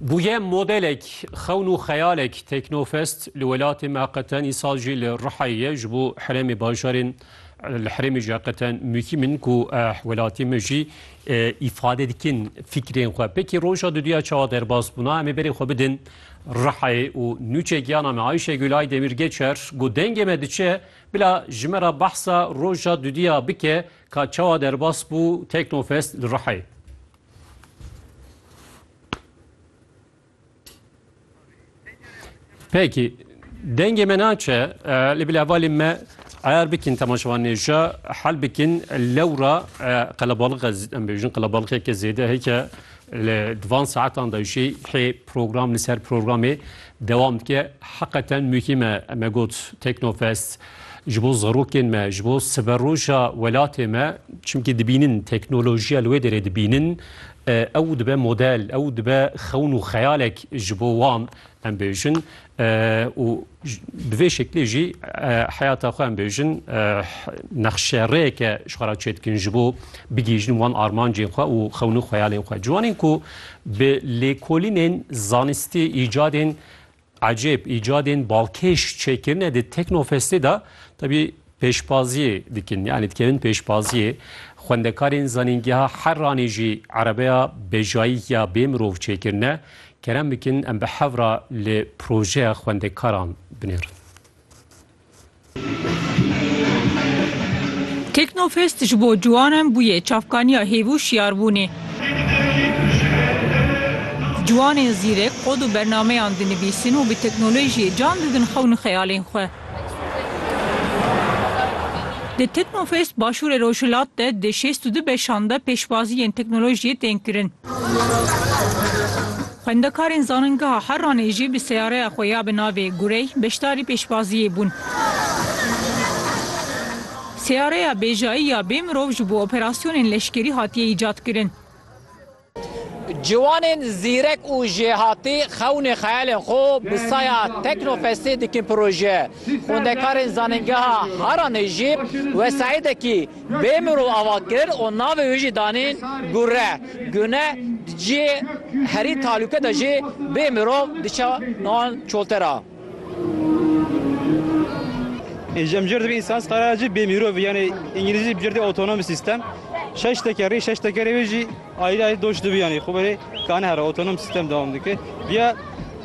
Bûye modelek xewn û xeyalek Teknofest li welatê me qeten îsal jî li Rihayê ye ji bo herêmê bajarên li herêmê jî qeten muhîm in ku welatê me jî îfade dikin fîkrên xwe. Pekî roja duduya çawa derbas bûna em ê berê xwe bidin Rihayê û nûçe giyana me Ayşegül Aydemir Geçer ku dengê me diçe bila ji me re behsa roja duduya bike ka çawa derbas bû Teknofest li Rihayê. Peki, dengê me naçe, e, li bila valê me ayar bikin temaşevan nêja, hel bikin lewra e, qelebalık ez em bêjin qelebalıkeke zêde heke li divan saetan da jî hê program li ser programê dewam dike. Heqeten muhîme me got Teknofest ji bo zarokên me, ji bo siberoja welatê me çimkî dibînin teknolojiya li wê derê dibînin ew dibe model, ew dibe xewn û xeyalek ji bo wan em bêjin û bi vê şeklê jî heyata xwe em bêjin nexşerêyeke ji xwe re çê dikin ji bo bigihîjin wan armancên xwe û xewn û xeyalên xwe. Ciwanên ku bi lêkolînên zanistî îcadên Ecêb îcadên balkêş çêkirine di Teknofestê de tevî pêşbaziyê dikin. Yanî dikevin pêşbaziyê. Xwendekarên Zanîngeha Herranê jî erebeya bejayî ya bê mirov çêkirine. Kerem bikin em bi hev re li projeya xwendekaran binêrin. Teknofest ji bo ciwanan bûye çavkaniya hêv û şiyarbûnê. Ciwanên zîrek kod û bernameyan dinivîsin û bi teknolojiyê can didin xewn û xeyalên xwe. Di Teknofest Başûrê Rojhilat de di şêst û du beşan de pêşwazî yên teknolojiyê tên kirin. Xwendekarên Zanîngeha Herranê jî bi seyareya xwe ya bi navê Gurey beşdarî pêşbaziyê bûn. Seyareya bêjayî ya bê mirov ji bo operasyonên leşkerî hatiye îcadkirin. Ciwanên zîrek û jêhatî xewnê xeyalên xwe bi saya Teknofestê dikin proje. Xwendekarên Zanîngeha Herranê jî wesaîdekî Bê mirov ava kir û navê wî jî danî Gure. Gune di cihê herî talûke de jî bê mirov diçe wan çolter a. Înce mcir dibe însan sqarajî bê mîrovî yanî îngilîzî bcir dê autonomous system. Şeş tekerî, şeş tekerê wê jî. Ayrı ayrı doş dibi yani xuberi kan her otonom sistem devam dike. Diye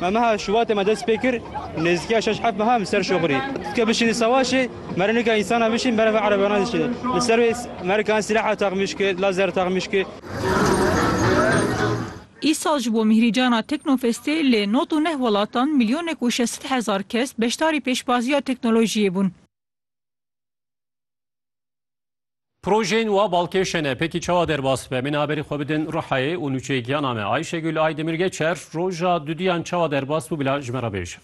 me meha şubatê me dest pêkir nêzdikiya şeş heft meha mi ser şoxirî. Dike bişînî savaşê merinika insana bişîn berevê erebana dişînî. Li ser wê merikan silaha texmîş ki, lazer texmîş ki. Îsal ji bo mîhrîcana Teknofestê li nod û neh welatan milyonek û şesit hezar kes beşdarî pêşbaziya teknolojiyê bûn. Projeyên wa balkêşe ne, pekî çawa derbas bibe? Min aberî xwe bidin Ruhayê û nûçeyê giyana me. Ayşegül Aydemir Geçer, roja duduyan çawa derbas bû bila ji me re bêje.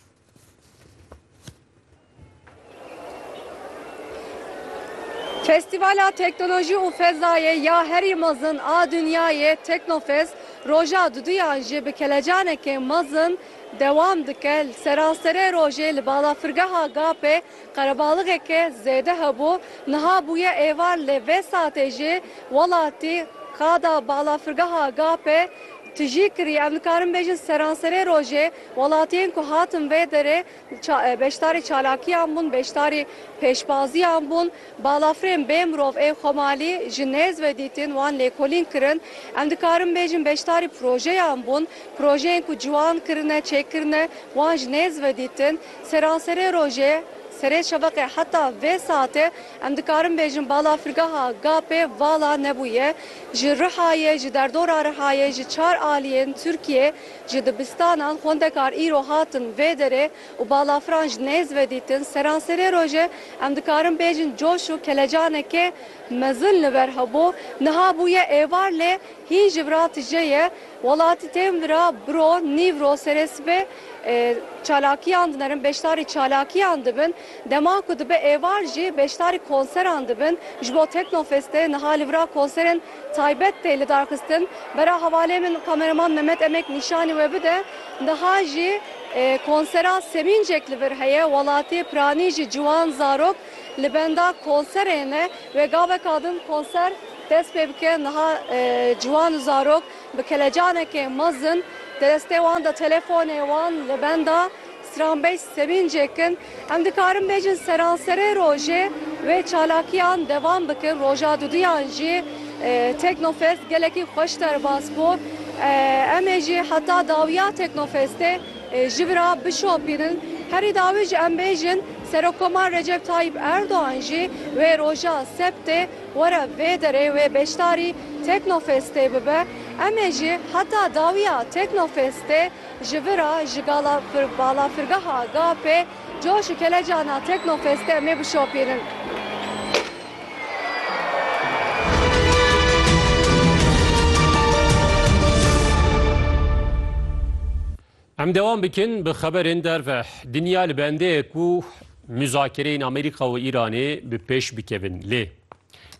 Festîvala Teknolojî û Fezayê ya herî mezin a dinyayê Teknofest roja duduyan jî bi kelecanekê mezin dewam dike. Li seranserê rojê li balafirgeha Gapê Qerebalixeke zêde hebû, niha bûye êvar lê vê satê jî welatî qada balafirgeha Gapê tijî kirî. Em dikarin bêjin seranserê rojê welatiyên ku hatin vê derê beşdarî çalakiyan bûn, beşdarî pêşbaziyan bûn. Balafirên bê mirov ê Xomalî ji nêz ve dîtin, wan lêkolîn kirin. Em dikarin bêjin beşdarî projeyan bûn, projeyên ku ciwan kirine, çêkirine wan ji nêz ve dîtin. Seranserê rojê, serê şeveqê heta vê saetê em dikarin bêjin balafirgeha Gapê vala nebûye. Ji Rihayê, ji derdora Rihayê, ji çar aliyên Tirkiyê, ji dibistanan xwendekar îro hatin vê derê û balafiran ji nêz ve dîtin. Seranserê rojê em dikarin bêjin coş û kelecanekê mezin li ber hebû. Niha bûye êvar lê hîn ji vira tije ye. Welatî tên vira biro nîvro serê sibê çalakiyan dinerin, beşdarî çalakiyan dibin. Dema ku dibe êvar jî beşdarî konseran dibin. Ji bo Teknofestê niha li vira konserên taybet tê lidarxistin. Bera hevalê min kameraman Memet Emek nîşanî we bide. Niha jî konsera semîncek li vir heye. Welatî, piranî jî ciwan, zarok. Li benda konserê ne wê gaveka din konser dest pê bike. Niha ciwan û zarok bi kelecanekê mezin di destê wan de telefonê wan li benda stranbêj sevîncek in. Em dikarin bêjin seranserê rojê wê çalakiyan devam bikin. Roja duduyan jî Teknofest gelekî xweş derbas bû. Em ê jî heta dawiya Teknofestê ji vir a bişopînin. Herî dawî jî em bêjin. Serokkomar Recep Tayyîp Erdogan jî wê roja sebtê were vê derê wê beşdarî Teknofestê bibe. Em ê jî heta dawiya Teknofestê ji vir a ji gala balafirgeha GAP'ê coş û kelecana Teknofestê em ê bişopînin. Em dewam bikin bi xeberên derve. Dinya li bendê ye ku muzakereyên Amerîka û Îranê bi pêş bikevin. Lê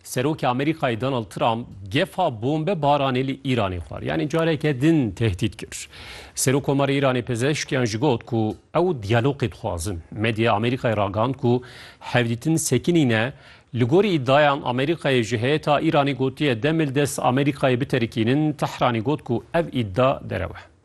Serokê Amerîkayê Donald Trump gefa bombe baranê li Îranê xwar. Yanî careke din tehdît kir. Serokkomarê Îranê Pezeşkiyan ji got ku ew diyalogê dixwazin. Medya Amerîkayê ragand ku hevdîtin sekinî ne. Li gorî îdiayan Amerîkayê ji heyeta Îranê gotiye demil dest Amerîkayê biterikînin. Tehranê got ku ev îdia derew e.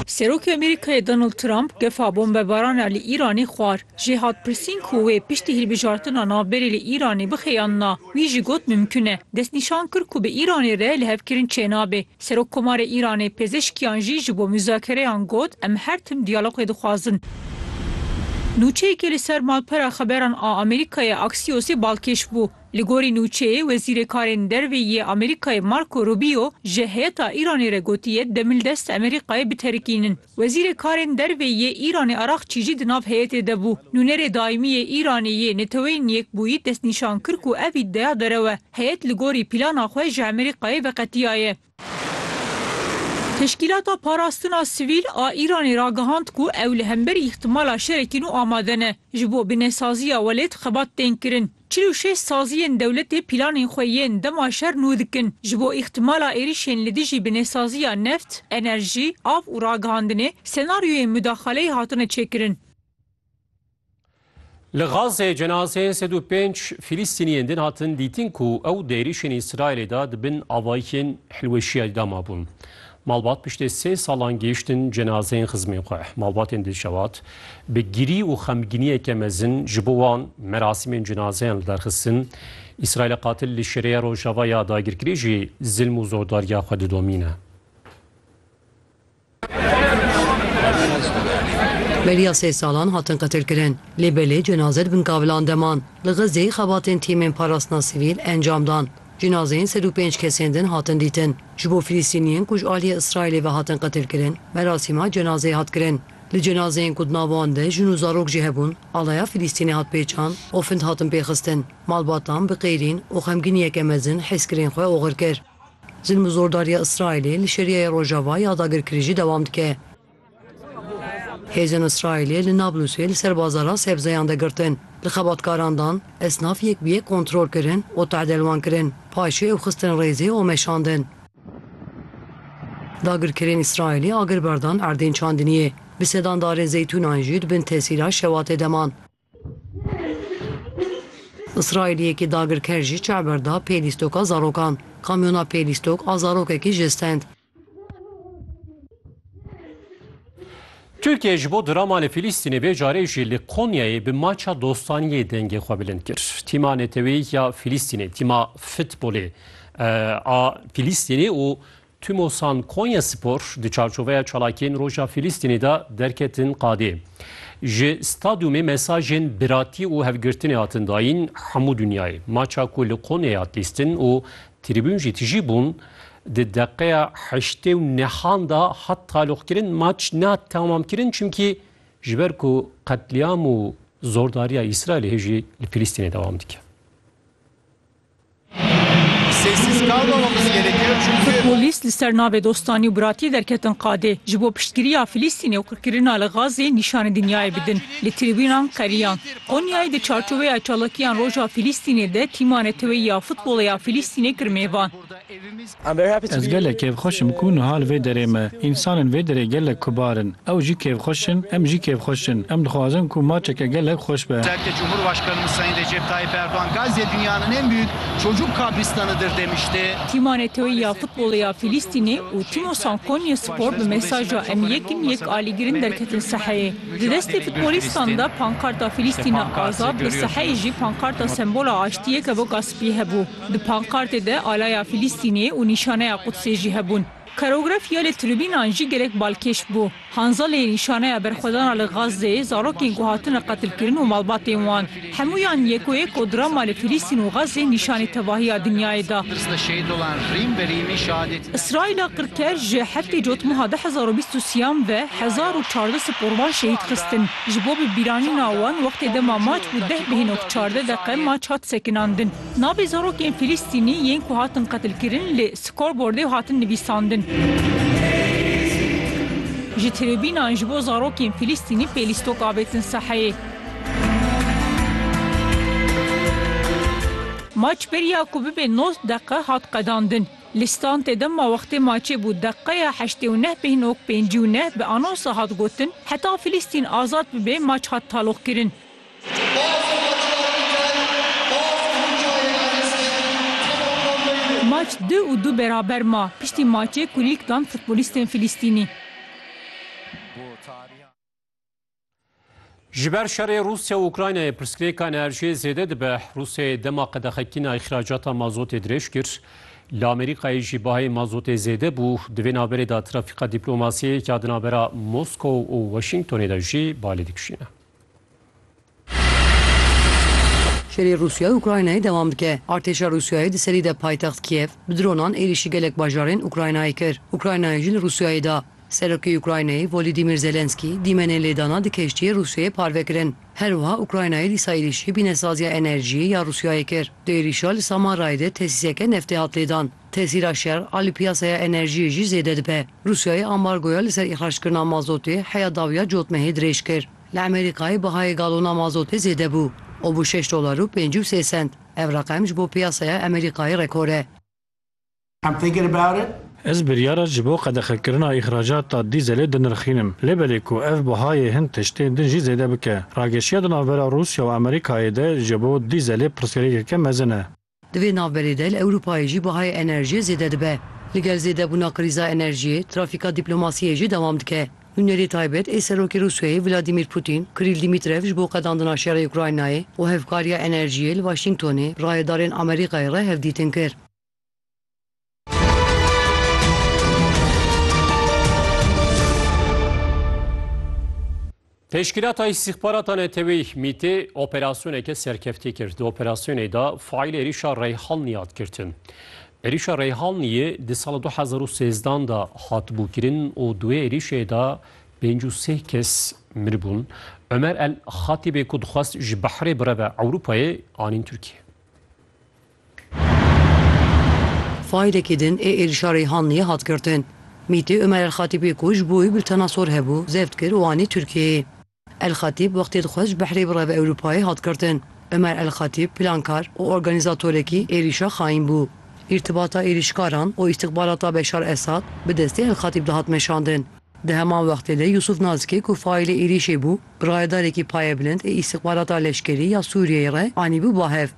Serokê Amerîkayê Donald Trump gefa bombebaran e li Îranê xwar. Jê hat pirsîn ku wê piştî hilbijartina navberê li Îranê bixeyandina, wî jî got mimkun e. Destnîşan kir ku bi Îranê re lihevkirin çênabe. Serok Komarê Îranê pêzeşkiyan jî ji bo muzakereyan got, Em her tim diyalogê dixwazin. Nûçeyekê li ser malpera xeberan a Amerîkayê Axiosê balkêş bû. Li gorî nûçeyê, Wezîrê Karên Derve yê Amerîkayê Marco Rubio ji heyeta Îranê re gotiye demil dest Amerîkayê biterikînin. Wezîrê Karên Derve yê Îranê Araxçî jî di nav heyetê de bû. Nûnerê Daîmî yê Îranê yê Neteweyên Yekbûyî destnîşan kir ku ev îdeya derew e. Heyet li gorî plana xwe ji Amerîkayê veqetiyaye. Teşkîlata Parastina Sivîl a Îranê ragihand ku ew li hemberî îhtimala şerekî nû amade ne. Ji bo binesaziya welêt xebat tên kirin. Çil û şeş saziyên dewletê pîlanên xwe yên dema şer nû dikin ji bo îhtimala êrîşên li dijî binesaziya neft, enerjî, av û ragihandinê senaryoyên mudaxaleyê hatine çêkirin. Li Gazê cenazeyên sed û pênc Fîlîstîniyên din hatin dîtin ku ew di êrîşên Îsraîlê de di bin avayikên hilweşiyayî de mabûn. Malbat piştê sê salan gihîştin cenazeyên xizmên xwe. Malbatên Dilşewat bi girî û xemgîniyeke mezin ji bo wan merasîmên cenazeyan li dar xistin. Îsraîlê qatil li şêreya rojava ya dagirkirî jî zilm û zordariya xwe didomîne. Beriya sê salan hatin qetilkirin. Lê belê cenaze di bin kavilan de man. Li Xizê xebatên tîmên parastina sivîl encam dan. Cinazeyên sed û pênc kesên din hatin dîtin. Ji bo Filistîniyên ku ji aliyê Îsraîlê ve hatin qetilkirin, merasîma cenazeyê hat kirin. Li cenazeyên ku di nav wan de jin û zarok jî hebûn, alaya Filistînê hat pêçand û find hatin pêxistin. Malbatan bi qeyrîn û xemgîniyeke mezin hêzkirên xwe oxir kir. Zilm û zordariya Îsraîlê li Şêriya ya Rojava ya dagirkirî jî dewam dike. Hêzên Îsraîlê li Nablusê li ser bazara sebzeyan de girtin, li xebatkaran dan, esnaf yek bi yek kontrol kirin û tade li wan kirin, paşê ew xistin rêzê û meşandin. Dagirkerên Îsraîlê agir berdan erdên çandiniyê, bi sedan darên zeytûnan jî di bin tesîra şewatê de man. Îsraîliyekî dagirker jî çav berda pê lîstoka zarokan. Kamyona pê lîstok a zarokekî jê stend. Tirkiye ji bo drama li Filîstînê vê carê jî li Konyayê bi maça dostaniyê dengê xwe bilind kir. Tîma Neteweyî ya Filîstînê, tîma futbolê a Filîstînê û Timosan Konyaspor di çarçoveya çalakiyên Roja Fîlîstînê de derketin qadê. Ji stadyumê mesajên biratî û hevgirtinê hatin dayîn hemû dinyayê. Maça ku li Konyayê hat lîstin û trîbûn jî tijî bûn, di deqeya heştê û nehan de hat taloqkirin. Maç nehat temamkirin çimkî ji ber ku qetlîam û zordariya Îsraîlê hê jî li Fîlîstînê dewam dike. Polîs li ser navê dostanî û biratiyê derketin qadê, ji bo piştgiriya Filîstînê û qirkirina li Gazê nîşanî dinyayê bidin. Li tribûnan qeriyan. Qonyayê di çarçoveya çalakiyan Roja Filîstînê de tîma neteweyî ya futbolê ya Filîstînê kir mêvan. Ez gelek kêfxweş im ku niha li vê derê me. Însanên vê derê gelek kubar in. Ew jî kêfxweş in, em jî kêfxweş in. Em dixwazin ku maçeke gelek xweş be. Serokê Cumhurbaşkanımız Sayın Recep Tayyip Erdoğan Gazze dünyanın en büyük çocuk kabristanıdır demişti. Tîma NATO'yê ya futbolê ya Fîlîstînê û Tîmosan Konyê Spor bi mesaja Em yek in, yek alîgir in derketin saheyê. Di destê futbolîstan de pankarta Fîlîstîne azad, di saheyê jî pankarta sembola aştiyê kevoka spî hebû. Di pankartê de alaya Filîstînê û nîşaneya Qudsê jî hebûn. Karografîya li tribînan jî gelek balkêş bû. Hanza lê nîşaneya berxwedana li Gazê, zarokên ku hatine qetilkirin û malbatên wan. Hemûyan yekûyek ku drama li Filîstîn û Gazê nîşanî tevahiya dinyayê da. Îsraîla qirker ji heftê cotmeha du hezar û bîst û siyan ve hezar û çardeh siporvan şehîd xistin. Ji bo bibîranîna wan wextê dema maç bû deh bihênok çardeh deqe maç hat sekinandin. Navê zarokên Filistînî yên ku hatin qetilkirin li scoreboardê hatin nivîsandin. Ji tribînan ji bo zarokên Filistînî pê lîstok avêtin saheyê. Maç beriya ku bibe nod deqe hat qedandin. Li standê de ma wextê maçê bû deqeya heştê û neh bêhn ok pêncî û neh bi anonsa hat gotin, heta Filistîn azad bibe maç hat taloqkirin. Maç du û du beraber ma piştî maçê kulîlk dan futbolîstên Filîstînî. Ji ber şerê Rûsya û Ukraynayê pirsgirêka enerjiyê zêde dibe. Rûsyayê dema qedexekîna îxracata mazotê dirêj kir. Li Amerîkayê jî bahayê mazotê zêde bû. Di vê navberê de trafîka dîplomasiyê ya di navbera Moskow û Washingtonê de jî balê dikişîne. Şerê Rûsya û Ukraynayê dewam dike. Artêşa Rûsyayê di serî de paytext Kîev bi dronan êrîşî gelek bajarên Ukraynayê kir. Ukraynayê jî li Rûsyayê da. Serokê Ukraynayê Volîdîmîr Zelenskî dîmenên lêdana di keştiyê Rûsyayê parve kirin. Her wiha Ukraynayê dîsa êrîşî bînesaziya enerjiyê ya Rûsyayê kir. Di êrîşa li Samarayê de tesîseke neftê hat lêdan. Tesîra şer a li piyasaya enerjiyê jî zêde dibe. Rûsyayê ambargoya li ser îxrackirina mazotê heya dawiya cotmehê dirêj kir. Li Amerîkayê bihayê galona mazotê zêde bû û bû şeş dolar û pêncî û sê sent. Ev reqem ji bo piyasaya Amerîkayê rekor e. I'm thinking about it. Ez biryara ji bo qedexekirina îxracata dîzelê dinirxînim. Lê belê ku ev bihayê hin tiştên din jî zêde bike. Rageşiya di navbera Rûsya û Amerîkayê de ji bo dîzelê pirsgirêkeke mezin e. Di vê navberê de li Ewropayê jî bahayê enerjiyê zêde dibe. Li gel zêdebûna krîza enerjiyê, trafîka dîplomasiyê jî dewam dike. Nûnerê taybet ê Serokê Rûsyayê Vladîmîr Pûtîn, Krîl Dîmîtrev ji bo qedandina şerê Ukraynayê û hevkariya enerjiyê li Waşîngtonê rayedarên Amerîkayê re hevdîtin kir. Teşkîlata Îstîxbarata Neteweyî Mîtê operasyoneke serkeftî kir. Di operasyonê de faîl êrîşa Reyhanlî hat girtin. Êrîşa Reyhanlîyê di sala 2013 de hatibû kirin û di wê êrîşê de pênc û sê kes miribûn. Ömer El Xatîbê ku dixwest ji behrê bireve Ewropayê anîn Tirkiye. Faîlekî din ê êrîşa Reyhanliyê hat girtin. Mîtê Omer El-Xatîbê ku ji bo wî bi li Tenasor hebû, zeft kir û anî Tirkiyeyê. El-Xatîb wextê dixwest ji Behrê bireve Ewropayê hat girtin. Omer El-Xatîb plankar û organîzatorekî êrîşa xaîn bû. Îrtibata êrîşkaran û îstixbarata Beşar Esad bi destê El-Xatîb de hat meşandin. Di heman wextê de Yûsûf Nazikê ku faîlê êrîşê bû, rayedarekî payebilind ê îstixbarata leşkerî ya Sûriyeyê re anîbû bahev.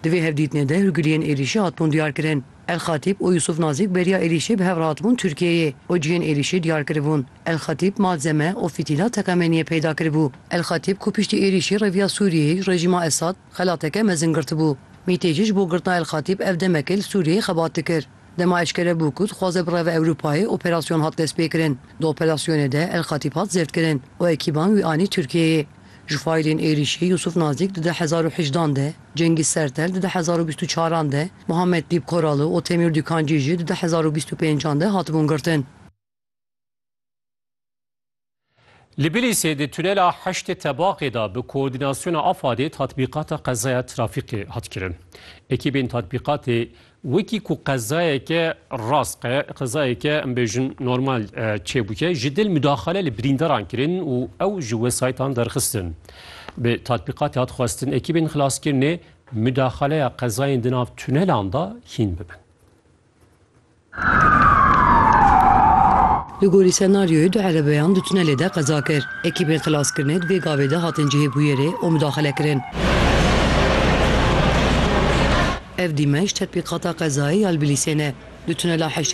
Di vê hevdîtinê de hûrgiliyên êrîşê hatibûn diyarkirin. El-Xatîb û Yûsûf Nazîk beriya êrîşê bi hev re hatibûn Tirkiyeyê û cihên êrîşê diyar kiribûn. El-Xatîb malzeme û fîtîla teqemeniyê peyda kiribû. El-Xatîb ku piştî êrîşê reviya Sûriyeyê ji rejîma Esad xelateke mezin girtibû. Mîtêjî ji bo girtina El-Xatîb ev demekê li Sûriyeyê xebat dikir. Dema eşkere bû ku dixwaze bireve Ewropayê operasyon hat destpêkirin. Di operasyonê de El-Xatîb hat zêrdkirin û ekîban wî anî Tirkiyeyê. Ji faîlên êrîşê Yûsûf Nazîk di du hezar û hejd an de, Cengîz Sertel di du hezar û bîst û çar an de, Muhammed Dîp Koralı û Temîr Dûkancî jî di du hezar û bîst û pênc an de hatibûn girtin. Li Bilîsê di tunela Heştê Tebaqê de bi koordînasyona AFAD'ê tatbîqata qezaya trafîqê hat kirin. Ekîbên tatbîqatê Wekî ku qezayeke rask e, qezayeke em bêjin normal çêbûye, ji dil mudaxale li birîndaran kirin û ew ji wesayîtan derxistin. Bi tatbîqatê hat xwestin ekîbên xilaskirinê mudaxaleya qezayên di nav tunelan de hîn bibin. Li gorî senaryoyê du erebeyan di tunelê de qeza kir. Ekîbên xilaskirinê di vê gavê de hatin cihê bûyerê û mudaxile kirin. Ev dîmenc tetbîqata qezayê ya li Bilîsê ne. Di tunela heştê